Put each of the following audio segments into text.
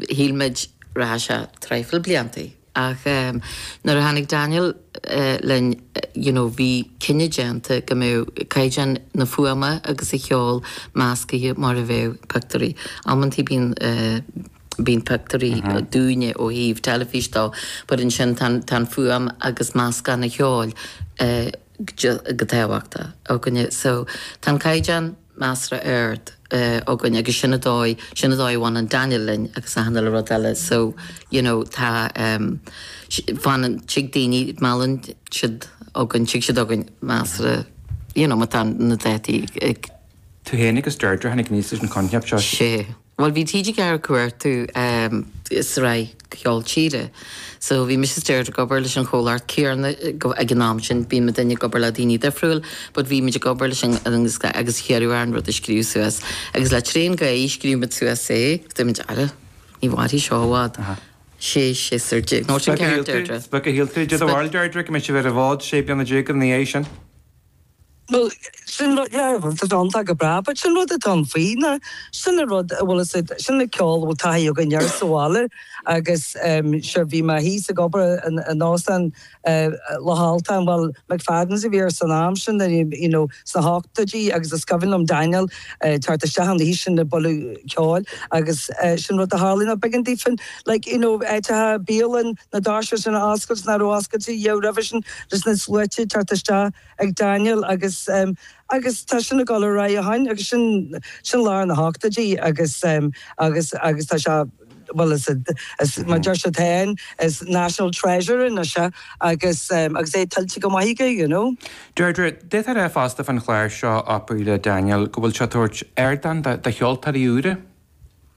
Shíl muid rachadh sé traidhfil blianta ach nuair a tháinig Daniel linn you know bhí cinneadh déanta go mbeadh caighdeán na fuaime agus an cheoil meascaithe mar a bheadh pictiúirí. Amanntaí bíonn bíonn pictiúirí dúinne ó thaobh teilifís dó but ansin tá an tá an fuaim agus meascán an cheoil go tábhachtach againne so tá an caighdeán measartha ard againn agus sin an dóigh, sin an dóigh a bhaineann Daniel linn agus achan uile rud eile so you know tá ehm fanann, tig daoine, meallann siad againn, tig siad againn measartha you know má tá na dátaí ag. tú féin agus Deirdre, tháinig aníos leis an choincheap seo. Sé. Bhuel bhí TG Ceathair ag cuartú sraith cheoil tíre so bhí mise is Deirdre ag obair leis an chomhlacht chéanna ag an am sin bíonn muidinne ag obair le daoine difriúla but bhí muid ag obair le chéile agus hiarradh orainn rud a scríobh suas agus le Train Gae scríobh muid suas é agus dúirt muid ara ní mhairfidh seo i bhfad sé séasúr déag nó sin ceart Deirdre? Is beag a shíl tú di do bharr Deirdre go mbeadh sibh ar an bhfód sé bliana déag ina dhiaidh sin. Bhuel, sin rud, yeah, bhuel tá an t-am go breá but sin rud atá iontach faoi ná sin an rud a bhfuil fhios a'd, sin an ceol a bhfuil taithí againn air sa bhaile agus ehm sure bhí mé thíos ag obair in, in óstán eh Loch Altáin, bhuel McFadden's a bhí air san am sin and you know sna hochtóidí agus is cuimhin liom Daniel eh teacht isteach an oíche sin ag bualadh ceoil agus eh sin rud a tharlaigh ná b'éigean daofa like you know áiteacha bialann na doirse sin a oscailt, nach raibh oscailte riamh roimhe sin. leis na sluaite ag teacht isteach ag Daniel agus agus tá sin ag dul ar aghaidh ó shin agus sin sin lár na h-ochtóidí agus agus agus tá sé bhuel is is mar a deir siad féin is national treasure anois é agus agus é tuillte go maith aige you know. Deirdre, deirtear é fosta fán chlár seo, Opry le Daniel go bhfuil sé ag tabhairt ardán do cheoltóirí úra.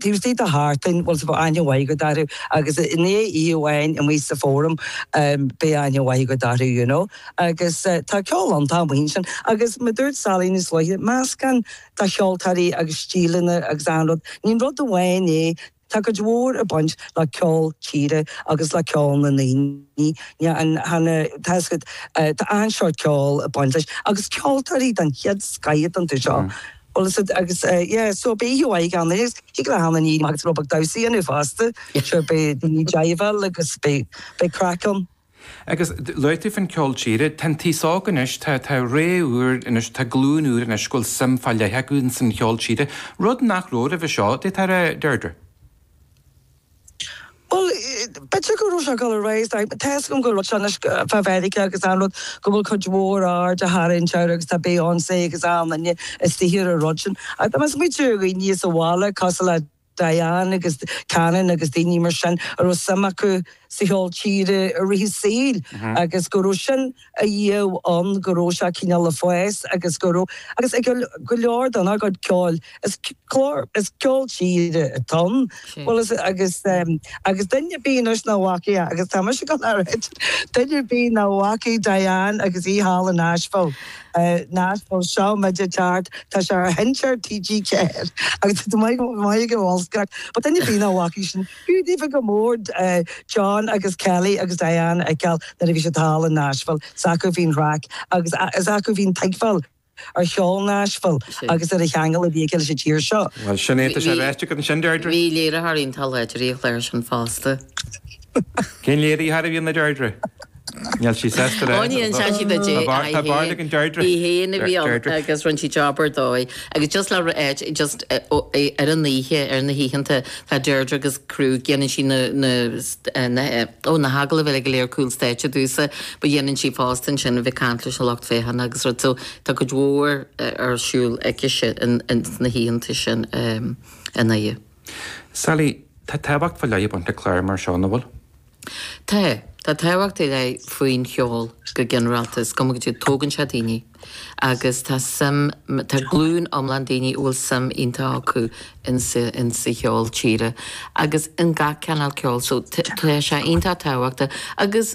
Tuesday the heart thing, bhuel, so bheadh aithne mhaith agat orthu agus i ndiaidh oíche amháin amuigh sa Forum, beidh aithne mhaith agat orthu, you know. Agus tá ceol iontach amuigh ansin. Agus mar a dúirt Sally níos luaithe, meascán de cheoltóirí agus stíleanna agus achan rud. Ní rud amháin é, tá cuid mhór ag baint le ceol tíre agus le ceol na ndaoine, tá achan seort ceoil ag baint leis agus ceoltóirí den chéad scoith ar an tseó seo. Bhuel is agus yeah so beidh tú aghaidh ann é thig le hAnna Ní agus Rob Mac Damhsaí inniu fosta so beidh daoine diabhal agus beidh beidh craic ann. Agus luaigh tú fán cheol tíre, tá an t-aos óg anois, tá tá ré úr anois, tá glúin úr anois go bhfuil suim fá leith acu ins an cheol tíre, rud nach raibh roimhe seo, b'fhéidir a Deirdre. Bhuel, b'fheidir go raibh sé ag dul ar aghaidh, tá fhios agam go raibh sé anois fá Mheiriceá agus an rud, go bhfuil cuid mhór aird á tharraingt air agus tá Beyonce agus achan duine istigh ar an rud sin. Ach tá mé ag smaoitiú ar dhaoine sa bhaile, cosúil le Diane agus Cannon agus daoine mar sin a raibh suim acu sa cheol tíre i rith a saoil agus go raibh sin, ariamh ann go raibh sé cineál le fás agus go raibh agus ag go leor dár gcuid ceoil. Is clár is ceol tíre atá ann. Bhuel is agus agus duine ar bith anois nach bhfaca é agus tá mise ag gabháil a rá duine ar bith nach bhfaca Diane agus í thall in Nashville. Nashville seo muid ag teacht tá sé ar sheinnteoir TG4 agus tá muid muid ag an bhfuil fhios agat. But duine ar bith nach bhfaca é sin. B'fhiú daofa go mór John agus Kelly agus Diane a fheiceáil nuair a bhí siad thall i Nashville. Is acu a bhí an chraic agus is acu a bhí an tuigbheáil ar cheol Nashville agus ar an cheangal a bhí aige leis an tír seo. Bhuel, sin é, tá sé ráite agat ansin, Deirdre. Bhí léiritheoir iontach láidir ag léiriú sin fosta. Cén léiritheoir a bhí ann a Deirdre? Níl sí sásta le. Ó níl, sean sí duit é. Tá bád ag an Deirdre. Í fhéin a bhí ann agus rinne sí job ar dóigh. Agus just le just ar an oíche, ar na hoícheanta, tá Deirdre agus crew, déanann sí na, na, na, ó na hagallaimh eile go léir cúl stáitse domhsa, but dhéanann sí fosta ansin a bheith ag caint leis an lucht féachana agus rud so tá cuid mhór ar siúl aici sin sna hoícheanta sin an oíche. Sally, tá tábhacht fá leith ag baint le cláir mar seo, an bhfuil? Tá. Tá tábhacht ar leith faoin cheol go ginearálta. Is cuma caidé tógann sé daoine agus tá suim, tá glúin iomlán daoine a bhfuil suim iontach acu in sa, in sa cheol tíre agus in gach cineál ceol. So tá sé iontach tábhachtach agus.